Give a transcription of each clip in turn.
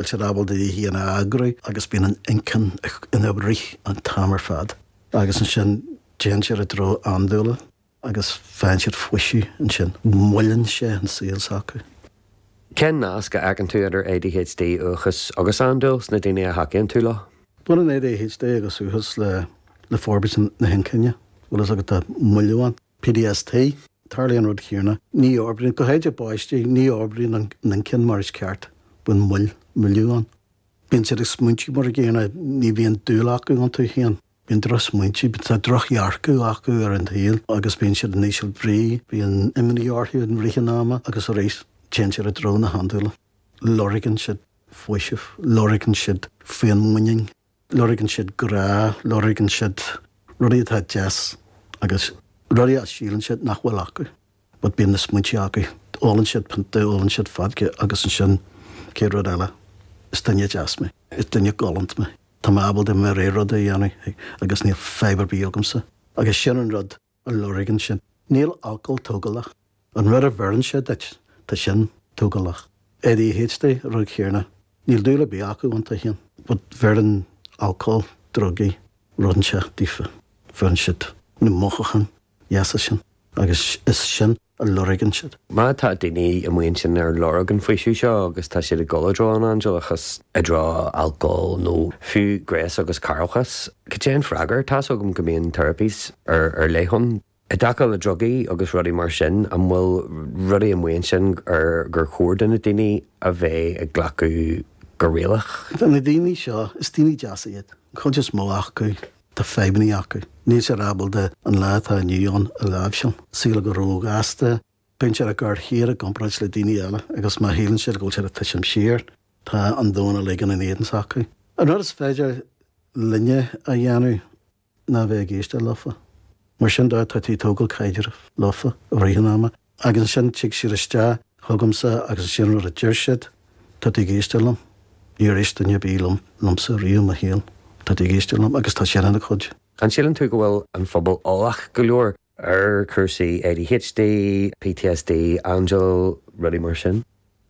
bhfuil siad ábalta iad féin a eagrú agus bíonn an inchinn ina rith an t-am ar fad agus ansin téann siad i dtreo andúile agus faigheann siad faoiseamh ansin. Moilleann sé an saol s'acu. Cén nasc a fheiceann tú idir ADHD, uathachas agus andúil sna daoine a thacaíonn tú leo? Baineann ADHD agus uathachas le forbairt na hinchinne, bhfuil fhios agat, tá moilliú ann. PTSD, tarlaíonn an rud chéarna. Ní fhorbraíonn, go háithrid i bpáistí, ní fhorbraíonn an inchinn mar is ceart. Bíonn moill, moilliú ann. Bíonn siad ag smaointiú mar an gcéanna, ní bhíonn dúil acu iontu féin. Bíonn drochsmaointe, bíonn, tá drochdhearcadh acu ar an tsaol agus bíonn siad in ísle brí, bíonn imní orthu i rith an ama agus arís téann siad i dtreo na handúla. Lorgann siad faoiseamh, lorgann siad féinmhuinín. Lorgann siad grá, lorgann siad rudaí atá deas agus rudaí a shíleann siad nach bhfuil acu but bíonn na smaointe acu. Ólann siad pionta, ólann siad fodca agus ansin an chéad rud eile, is duine deas mé, is duine galánta mé, tá mé ábalta mo rogha rud a dhéanamh agus níl fadhb ar bith agamsa agus sin an rud a lorgann siad. Níl alcól tógálach. An rud a bheireann sé duit, tá sin tógálach. ADHD, rud chéarna. Níl dúil ar bith acu iontu féin. But bheireann alcól, drugaí, rud inteacht daofa. Bheireann siad na mothúcháin dheasa sin agus is é sin a lorgann siad. Má tá daoine amuigh ansin ar lorg an faoiseamh seo agus tá siad ag dul i dtreo an andúileachas, i dtreo alcól nó fiú gnéas agus cearrbhachas, cad é an freagra? Tá's agam go mbíonn therapies ar leith ann. I dtaca le drugaí agus rudaí mar sin, an bhfuil rudaí amuigh ansin ar chóir do na daoine a bheith ag glacadh go rialta? Tá na daoine seo, is daoine deasa iad, an chuid is mó acu, Tá fadhbannaí acu. Níl siad ábalta an lá atá inniu ann a láimhseáil. An saol ag dul róghasta, bíonn siad á gcur féin i gcomparáid le daoine eile agus má shíleann siad go bhfuil siad ag titim siar, tá an domhan uilig in éadan s'acu. Ach an rud is féidir linne a dhéanamh ná bheith ag éisteacht leofa. Mar sin de, tá tú ag tógáil caidreamh leofa i rith an ama. Agus ansin tig siad isteach chugamsa agus is é an rud a deir siad, 'tá tú ag éisteacht liom? Níor éist duine ar bith liom, liomsa riamh i mo shaol. Tá tú ag éisteacht liom? Agus tá sin ina chuidiú. An síleann tú go bhfuil an pobal eolach go leor ar chúrsaí ADHD, PTSD, andúil, rudaí mar sin?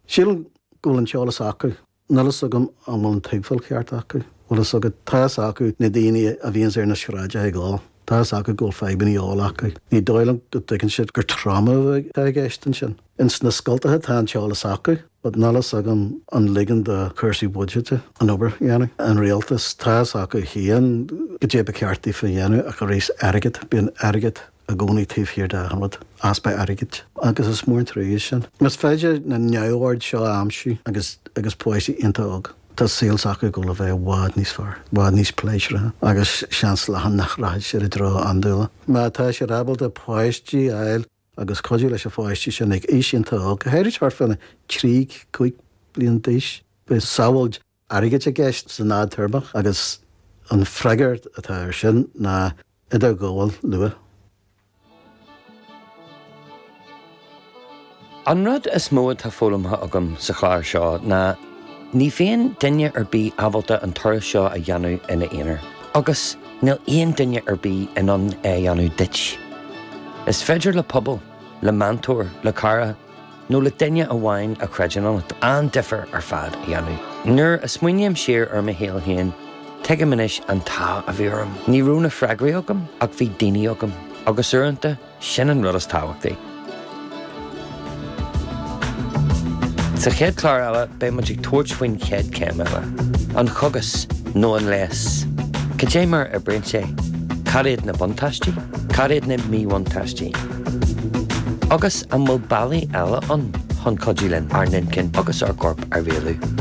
Sílim go bhfuil an t-eolas acu. Níl fhios agam an bhfuil an tuigbheáil ceart acu. Bhfuil fhios agat, tá fhios acu na daoine a bhíonns ar na sráideacha ag ól, tá fhios acu go bhfuil fadhbannaí óil acu. Ní dóigh liom go dtuigeann siad gur tráma atá i gceist ansin. Ins na scoltacha tá an t-eolas acu but níl fhios agam an ligeann do chúrsaí buiséid an obair a dhéanamh. An rialtas, tá fhios acu féin goidé ba cheart daofa a dhéanamh ach aríst airgead, bíonn airgead. i gcónaí taobh thiar de achan rud, easpa airgid agus is mór an truaighe é sin. Más féidir na neamhoird seo a aimsiú agus agus páistí iontach óg, tá saol s'acu ag dul a bheith i bhfad níos fearr, i bhfad níos pléisiúrtha agus seans leathan nach rachaidh siad i dtreo andúile. Má tá siad ábalta páistí a fháil agus cuidiú leis na páistí sin ag aois iontach óg, go háirid thart faoina trí, cúig bliain d'aois, beidh sábháil. airgid i gceist san fhadtéarmach agus an freagairt atá ar sin ná idirghabháil luath. An rud is mó atá foghlamtha agam sa chlár seo ná ní bhíonn duine ar bith ábalta an turas seo a dhéanamh ina aonar agus níl aon duine ar bith in ann é a dhéanamh duit. Is féidir le pobal, le meantóir, le cara, nó le duine amháin a chreideann ionat, an-difear ar fad a dhéanamh. Nuair a smaoiním siar ar mo shaol féin, tuigim anois an t-ádh a bhí orm. Ní raibh na freagraí agam, ach bhí daoine agam, agus uaireanta, sin an rud is tábhachtaí. Sa chéad chlár eile, beidh muid ag tabhairt faoin chéad chéim eile, an cógas nó an leigheas. Cad é mar a oibríonn sé? Cad iad na buntáistí? Cad iad na míbhuntáistí? Agus an bhfuil bealaí eile ann chun cuidiú linn ár n-inchinn agus ár gcorp a rialú?